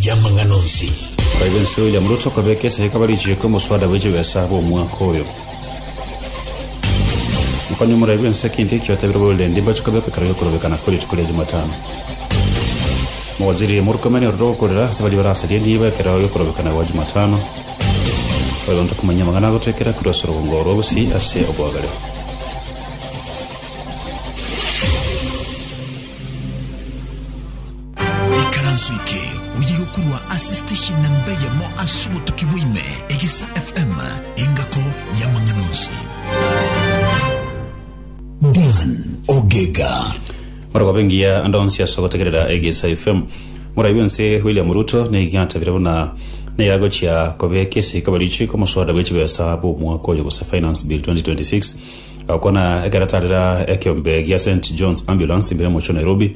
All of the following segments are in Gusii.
y'amang'ana onsi. Naibo ense William Ruto kobeka esaiko barichieke omoswada bwe chibesa bw'omwaka oyo. Mokonyi omoraibi ense keinto ekio atebirie Boilendi mbache kobeka ekero y'okorobeka nakwo rituko ria Jumatano. Mowaziri Murkomen orire ogokorera ase baria barasaria niiba ekero y'okorobeka na gwa Jumatano. Oyo onto komanyia amang'ana agotoekera korwa ase orogongo rwa Gusii ase oboagare. Ikaranso eke oye gokorwa ase station namba eyemo ase obotuki bwaime, Egesa FM, engako y'amang'ana onsi. Dan Ogega. Morogobe ngiya ande onsi ase ogotegerera Egesa FM. Morai bwense William Ruto nigo atabire buna nigo agochia kobeka esiko barichi komosoda bwe chibesa bw'omwaka oyo gose Finance Bill 2026 agokwana ekero atarera ekeombe gia St John's Ambulance mbere mochio Nairobi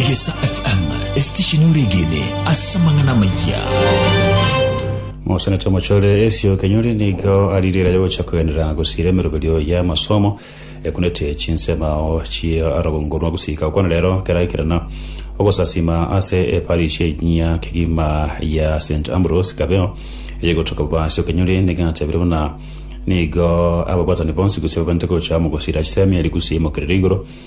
Egesa FM, esitesheni oregene ase amang'ana amayia. mosenete omochore esio kenyori nigo ari rira yogocha kogenera gosira emeroberio ya amasomo ekunete chinsemao chia aragongo rwa gusika okwana rero keraikirana ogosasima ase eparish enyia kegima ya st ambrose kabeo eyegotoka bobasio kenyori nigatabire buna nigo ababwatani bonsi gose babente gocha mogosira chisemi eri gusi emokerere igoro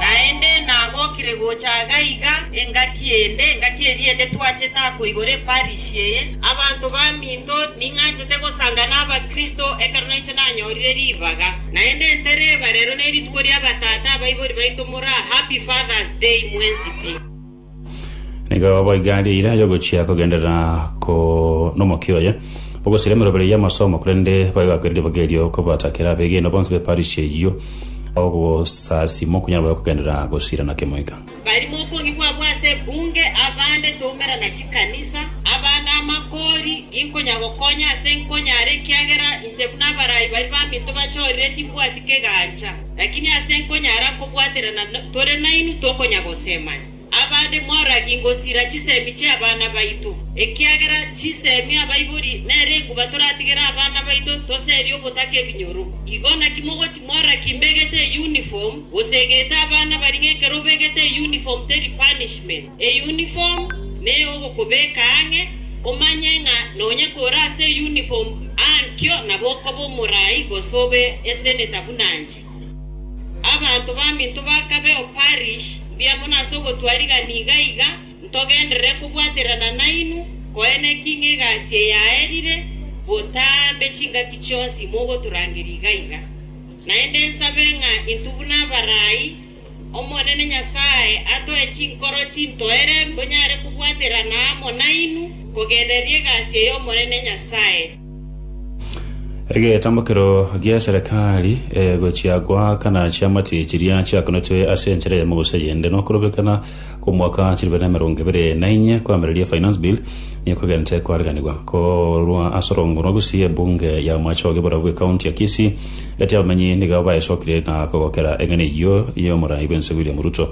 Naende nagokire gocha gaiga engaki ende, engaki eria ende twachete ako igoro eparish eye. Abanto baminto ning'anchete gosanga n'Abakristo, ekero nainche nanyorire ribaga. Naende ntereba, rero nerituko ri'abatata abaibori baito moraa, Happy Father's Day mwensi pi. Nigo boigo egari eira yogochia kogenderera ko nomokia oye, bagosira emerobera y'amasomo, korende bagakwerire riboga erio kobatakera abegeni bonsi be parish eyio ogosasima okonyara bobe kogenderera gosira na kemoika. Barimo okong'igwa abwo ase ebunge, abande toumera na chikanisa, abande amakori, ginkonya gokonya ase nkonyara ekiagera inche buna abarai baria baminto bachorire timbwati kegancha. Lakini ase nkonyara nkobwaterana tore nainwe tokonyagosemanya. Abande moragi ngosira chisemi chi'abana baito, ekiagera chisemi abaibori nere enguba toratigere abana baito toserie ogotaka ebinyoro. Igo naki mogochi moragi mbegete uniform, gose egete abana baria ng'ekero obegete uniform teri punishment. Eyunifomu ney'ogokobeka ang'e, omanye ng'a nonya kore ase eyunifomu ankio nabo okoba omoraai gose obe eseneta buna inche. Abanto baminto bakabe o parish, mbuya mono ase ogotwaa rigani iga iga, ntogenderere kobwaterana nainwe, koeneki ng'a egasi eye yaerire botambe chingaki chionsi mogotorangeria iga iga. Naende nsabe ng'a intwe buna abaraai Omonene Nyasae atoe chinkoro chintoere nkonyare kobwaterana amo nainwe kogendereria egasi eye Omonene Nyasae. Egetambokero gia Serikali egochia goakana chiamati chiria chiakonetwe ase enchera y'emegusha yende nokorobekana, Omwaka chilife na emerongo ebere na inye koamereria finance bill nigo kogentete koariganigwa korwa ase orongo rwa Gusii ebunge ya Mwachao gebarua bwe county ya Kisii gati abamenyi nigo baesokire na kogokera eng'ana eyio y'omorai bwense William Ruto.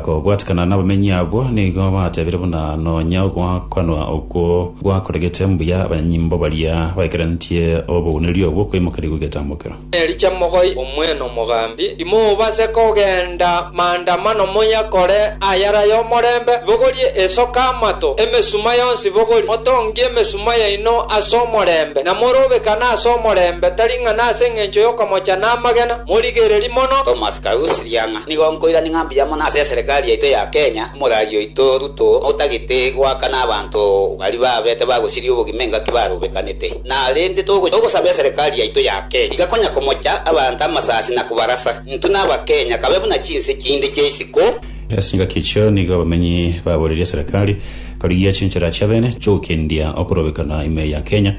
Kobwatikana nabamenyi abwo nigo batebire buna nonya ogoakanwa okwo gwakoregete mbuya abanyimbo baria baikarantie obogwenireria obwo kwaimokereigwe getambokero. Ericha mogoi omwene omogambi, timobase kogenda maandamano moyakore ayare ay'omorembe, bogorie esoka amato, emesuma yonsi bogorie, motongie emesuma yaino ase omorembe, na morobekane ase omorembe, tari ng'a nase engencho y'okomocha namagena, morigererie mono. Thomas Karusi, Riang'a, nigo nkoirania ng'a mbuya mono ase eserikari yaito ya Kenya, omoragi oito Ruto, otagete goakana abanto baria babete bagosiria obogima engaki barobekanete. na rende togocha gosaba eserekari yaito yake, iga konya komocha abanto amasasi na kobarasa. Intwe n'Abakenya kabe buna chinse chinde chia isiko. Ase engaki echio nigo abamenyi baboreria eserekari korigia ache enchera chiabene chiogokendia okorobekana ime ya Kenya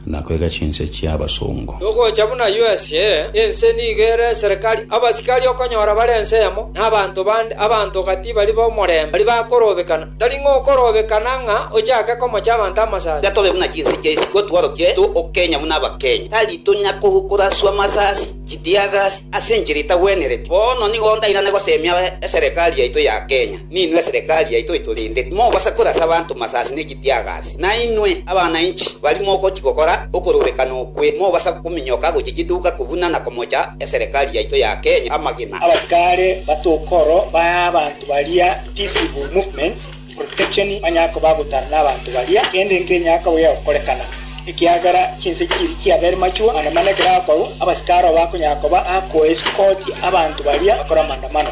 na koiga chinse chia abasongo. Togocha buna USA, ense nigo ere eserekari, abasikari okonyora bare ense eyemo, na abanto bande, abanto gati baria b'omorembe, baria bakorobekana. Tari ng'okorobekana ng'a ochake komocha abanto amasasi. Tiga tobe buna chinse chia isiko tworokie to okenya buna abakenya. Tari tonya koraswa amasasi chitiagasi ase enchera etagwenereti. Bono nigo ndairane gosemia eserekari yaito ya Kenya. Ninwe eserekari yaito etorende timobasa korasa abanto masasi ne chitiagasi. Nainwe abana inchi baria mogochi gokora okorobekana okwe mobasa kominyoka gochia chiduka kobuna na komocha eserekari yaito ya Kenya amagena. Abasikare batokoro ba baria peaceable movement, protection banyare koba agotara nabanto baria, kende nkenyare koyia gokorekana, ekiagera chinse chiria chiabere machwo, manda mana ekero akorwa, abasikari abo bakonyara koba ako escort abanto baria bakore amandamano.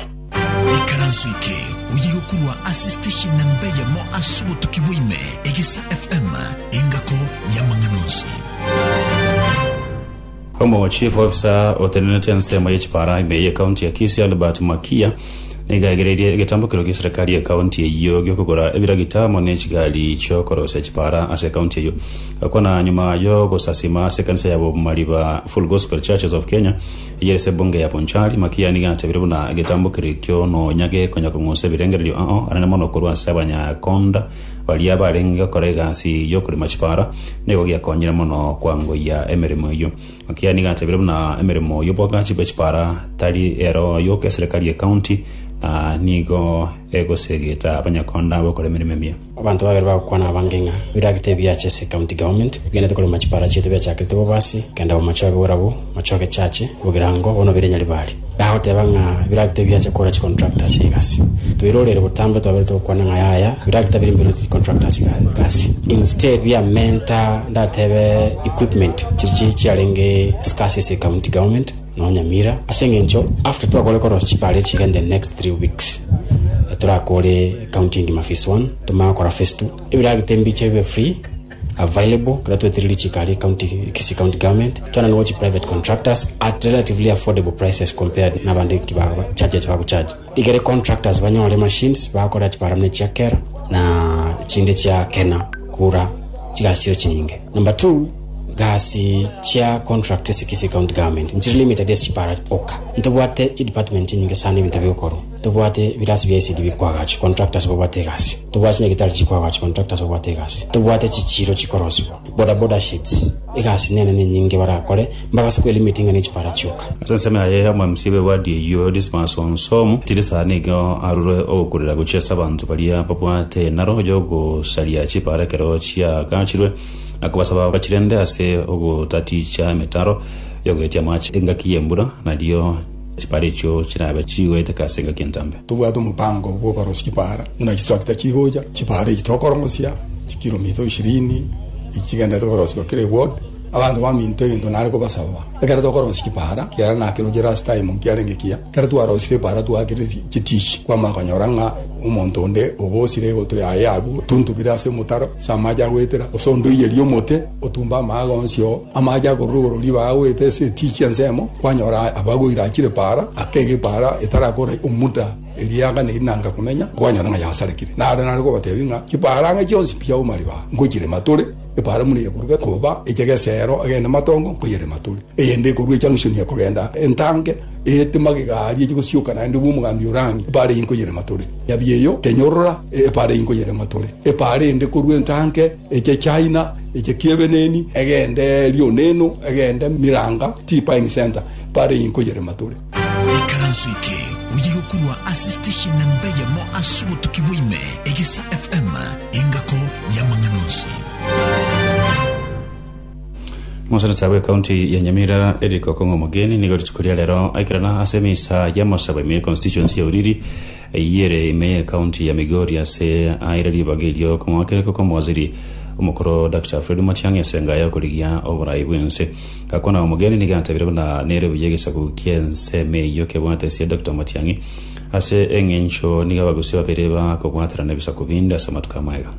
Ekaranso eke oye gokurwa ase station na mbeyemo ase obotuki bwa ime, Egesa FM, engako y'amang'ana onsi. Omo chief officer otenenete ensemo ye chipara ime ye county ya Kisii Albert Makia nigo aigereirie egetambokero gie serikali ye county eyio giokogora ebiragita amo ne chigari chiokorosia chipara ase county eyio gakwana nyuma yogosasima ase ekanisa ya Bomariba Full Gospel Churches of Kenya eyio ase ebunge ya Bonchari Makia nigo atebire buna egetambokero ekio nonya gekonya kong'usa ebirengererio ao anene mono korwa ase abanyakonda Baria abarenge gokora egasi y'okorema chipaara nigo giakonyire mono kwangoyia emeremo eyio. Gaki nigo atebire buna emeremo y'obwagachi bwe chipaara tari ero yoka eserekari y'ecounty na nigo egosegeta abanyakonda bokora emeremo emiya. Abanto babere bagokwana abange ng'a biragite ebiacha ase ecounty government bigenete korema chipaara chiaito biachakerete bobaasi kenda bomochoge borabwo, mochoge chache, bogerango, bono bire nyaribari. Nagoteba ng'a biragita biacha kora chicontractor ase egasi. Toirorere botambe twabere togokwana ng'a yaya biragita biria mbirorete chicontractor ase egasi. Instead biamenta ndatebe equipment chiria chiarenge scarce ase ecounty government nonya Nyamira ase eng'encho after twakore korosia chipare echiga in the next three weeks torakore county engima phase one tomanye gokora phase two ebiragita mbiche bibe free. available ekero twetereri chikari county Kisii county government twena nigo chi private contractors at relatively affordable prices compared nabande ki ba charge eki bagucharge igere contractors banyore machines bagokora ati barabne chia kera na chinde chia kena kura chigasi chire chinyinge number two gasi chia contract ase Kisii county government nchire limited ase chipara oka ntobwate chi department nyinge sana ebinto bigokorwa Tobwate ebirasi bia esidi bikwa agachi, contractors babwate egasi. Tobwate chinyagetari chikwa agachi, contractors babwate egasi. Tobwate chichiiro chikorosibwa, boda boda sheds. Egasi nene nenyinge barakore, mbagase kwelimit ng'a nechipara chioka. Ase ensemo yaye ya omomsii b'ewadi eyio Dismas Onsom, tiri saha nigo arure ogokurera gochia ase abanto baria babwate enaro y'ogosaria chipara ekero chiaagachirwe, na kobasaba bachirende ase ogotaticha emetaro y'ogoetia amache engaki y'embura, nario Chipaara echio chirabe chigoeteke ase engaki entambe. Tobwate omobaango bw'obarosia chipaara buna chitrakta chigocha. Chipaara echi tokorongosia chikilomita ishirini echi chigenderete korosiwa kera ewodi. Abanto baminto egento nare kobasaba, ekero tokorosia chipaara, kiagera nakeroche last time nkiarenge ekiya, ekero twarosire epaara twaakire chitishi, kwamanya konyora ng'a omonto onde obosire egutwe yaye abwo, tuntubire ase omotaro ase amache agoetera, gose onde oiyerie omote. Otumba amaaga onsi oo amache akorwa igoro ribaga goeta ase etiiki ensemo, kwanyora abagwa irachire paara, aka egepaara etarakora omuda eria yaganeirie nanga komenya, kwanyora ng'a yasarekire. Naro nare kobatebia ng'a chipaara ang'e chionsi mpiyauma ribaga, ngochirema tore, epaara buna eyekorwa gekoba eche geseero agende matongo, nkoyerema tore. Eyende ekorwa echang'usuni ekogenda entanke, eete magega aria echi gosioka naende bwa omogambi ore ang'e, epaara eyio nkoyerema tore. Nyabieyo, tenyorora, epaara eyio nkoyerema tore. Epaara eyende ekorwa entanke. Eche China, eche kiebeneni, egende Lioneno, egende Miranga, T-Pine Center, bare iyi nkoyerema tore. Ikaranso eke oye gokurwa ase station namba eyemo ase obotuki bwa ime, Egisa FM, engako y'amang'ana onsi. Moseneta bw'Ekaunti ya Nyamira Eric Okong'o Omogeni nigo rituko ria rero aikerana ase emisa y'amosabo ime y'econstituency ya Oriri Eyio ere ime y'Ekaunti ya Migori ase aire ribaga erio komoakereko kw'omowaziri omokoro Dr. Fred Matiang'i ase enga y'okorigia oborai bw'ense. Gakwana omogeni nigo atebiire buna nere buya egesaku ki'ensemo eyio kebwate esie Dr. Matiang'i ase eng'encho nigo abagusia babere bakobwaterana ebisaku binde ase amatuko amaya.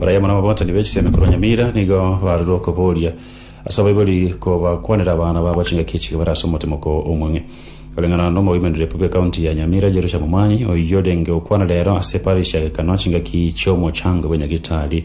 Barabwo nababwatani be chisemi korwa Nyamira nigo barorire okobooria ase abaibori kobakwanera abana babo chingaki echi bare ase omotimoko omong'e. Koreng'ana nomoimanereria bwe county ya Nyamira Jerusha Momani oyio orenge okwana rero ase parish ya Gekano chingaki chiomochango bwe Nyagitari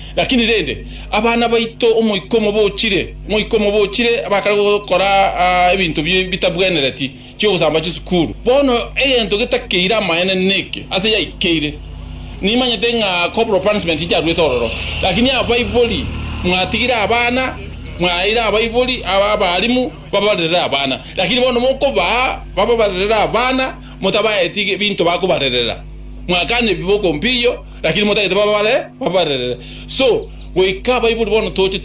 Lakini rende, abana baito omoika omo bochire, omoika omo bochire, bakare gokora ebinto bitabwenereti, chi'ogosamba chisukuru. Bono egento getakeire amaene neke, ase yaikeire. Nimanyete ng'a corporal punishment incharuete ororo, lakini abaibori mwatigire abana, mwaeire abaibori, abalimu babarerere abana, lakini bono mokobaa bababarerere abana, motabaeti ebinto bakobarerera, mwakana ebibe okompiyio, Lakini motagete babare babarerere so goika abaibori bono toche